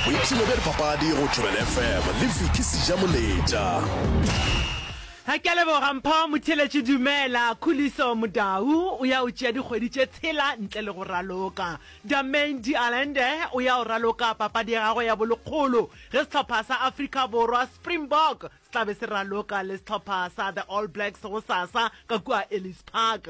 boipshino bja dipapadi go thobela fm le viki seja moletša Ga ke a leboga Mpho Motheletši Dumela Khuliso Modau o ya o tšea dikgwedi tše tshela ntle le go raloka Damain Dialende o ya o raloka papadi ya gagwe ya bolekgolo ge sehlopha sa Afrika Borwa Springbok se tla be se raloka le sehlopha sa The All Blacks gosasa ka kua Ellis Park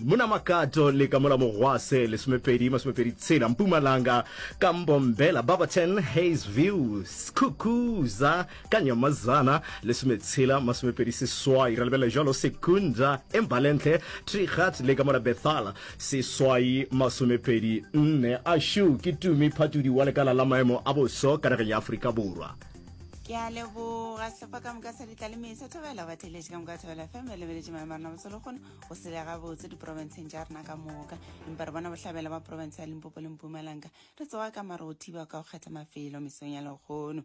Mna Makato le ka mola Mogwase, lesomepedi, masomepedi tshela, Mpumalanga, ka Mbombela, Barberton, Hayes View, Skukuza, ka Nyamazana, lesometshela, masomepedi seswai, ra lebelela jalo Sekunda, Embalentle, Trigat le ka mola Bethala, seswai, masomepedi nne. Ashu, ke Tumi Phatudi wa lekala la maemo a boso ka nageng ya Afrika Borwa. Ke a leboga sehlopha ka moka sa Ditlaleimei sa Thobela, batheeletši ka moka Thobela FM, ba lebeletše maemo a rena boso lehono. go sele gabotse diporofenseng tša rena ka moka empa re bona bohlabela ba porofense ya limpopo le mpumalanga re tsoga ka mare go thiba ka go kgetha mafelo mesong ya lekgono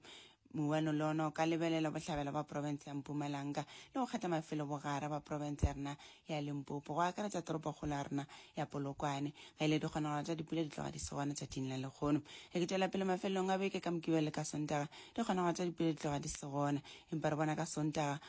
mouano le ona o ka lebelela bohlabela ba porofense ya mpumalanga le go kgetha mafelo bogare ba porofense ya rena ya limpopo go akaretsa toropokgolo ya rena ya polokwane ga ile dikgonagalo tša dipula di tloga di se gona tšatšing la lekgono re ke tšwela pele mafelelong a beke ka mokibele ka sontaga dikgonagalo tša dipula di tloga di se gona empa re bona ka sontaga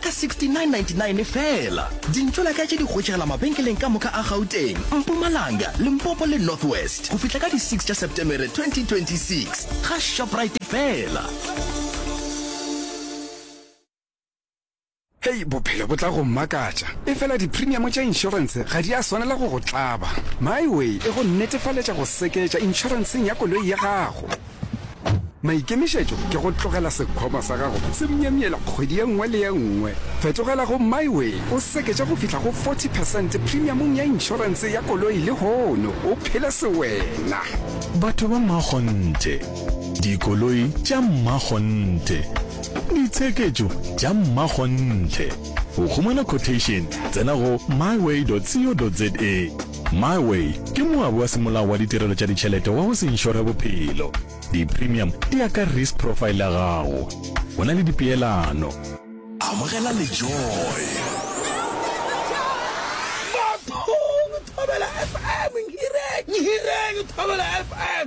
Ka 69.99 feela. Dintlo la ka tše di hwetšegela mabenkeleng ka moka a Gauteng, Mpumalanga, Limpopo le North West go fihla ka di 6 tša Setemere 2026. Ga Shoprite feela. Hei, bophelo bo tla go mmakatša. Efela diprimiamo tša inšorense ga di a swanela go go tlaba. MyWay e go netefaletša go seketša inšorenseng ya koloi ya gago. Maikemišetšo ke go tlogela sekhwama sa gago se myemyela kgwedi ye nngwe le ye nngwe. Fetogela go MyWay o seketše go fihla go 40 percent premiumong ya inšorense ya koloi lehono o phele sewena. Batho ba mmakgonthe, dikoloi tša mmakgonthe, ditsheketšo tša mmakgonthe. Go humana quotation tsena go myway.co.za. MyWay ke moabi wa semolao wa ditirelo tša ditšhelete wa go se inšore bophelo. Di-premium di ya ka risk profile ya gago. Go na le dipeelano. Amogela le joy. Bathong, Thobela FM, Nhireng, Nhireng, Thobela FM.